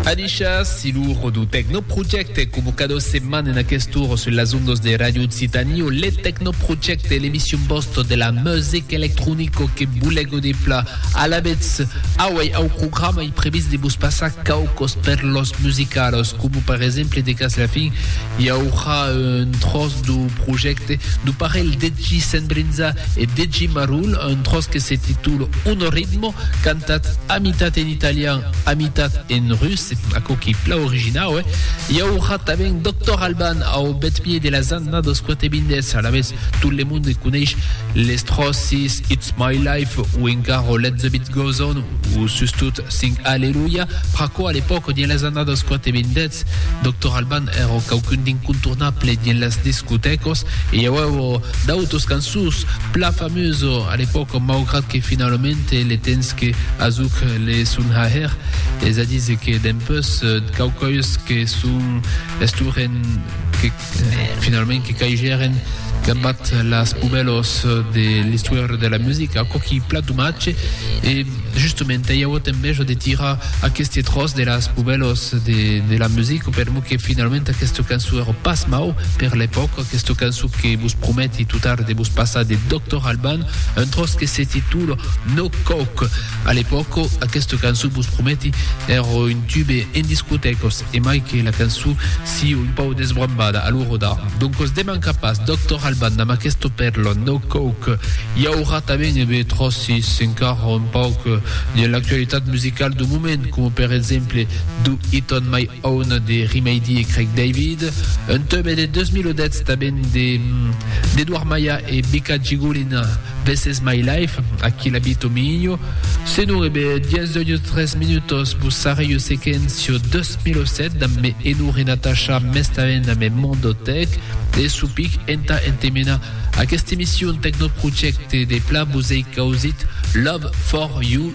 Adisha, si lo Rodu Tecno Project è convocat ò setman en aquest ora sus las ondas de Radio Occitanie ò Le Tecno Project è l'emission bosta de la music electronico que bulègo de pla. Alabetz, auei au programa i previst de vos passar quaucos perlos musicalos, coma per exemple de cas la fin i aurà un tros do projecte do parelh Deggi Sembrinza e Deggi Marul, un tros que se titula Uno Ritmo, Cantat a mitat en italian, a mitat en rus, se pon aquò qu'ei plan originau, eh? I aurà tanben Doctor Alban au betmiei de las annadas quate-vindes, alavetz tot le monde coneish l'estròsis It's my life o encara Let the beat goes on o sustot Sing alleluia, pr'aquò a l'epòca, dins las annadas quate-vindes, Doctor Alban èra quauqu'un d'incontornable dins las discotècas e i aueva d'autas cançons, Pla famoso a l'epòca, maugrat que finalament le tens que azuc le son haer, es a díser que dempeus quauqueus que son esturen que finalament que caigèren dambat las poubèlos de l'histoire de la musica, aquò qui pla domatge, e justament ei auot enveja de tirar aqueste tròç de las poubèlos de la musica, permeu que finalment aquesta cançon èra pas mau per l'epòca. Questo cançon que vos prometi totard de vos passar de Doctor Alban un tròç que se titula No Coke. A l'epòca, aquesta cançon, vos prometi, èra un tube en discotècas, e mai que la cançon siá un pauc desbrambada a l'ora d'ara. Doncas demanca pas Doctor Alban damb aquesta pèrla No Coke. I aurà tanben e be tròces encara un pauc de l'actualitat musicala dau moment, coma per exemple Do It On My Òun de Rimeidi e Craig David, un tube de 2010 tanben de d'Edouard Maia e Bica Gigoulin, This is my life, Aquí l'abito miño, senon ebe diens de ieus tres minutos vos sarriu Sequencio 2007 damb me Enour e Natacha mes tanben damb e Mondo Tech e Supic entà entemenar aguesta emission Tecnoprojecte de pla vos ei causit Love for you.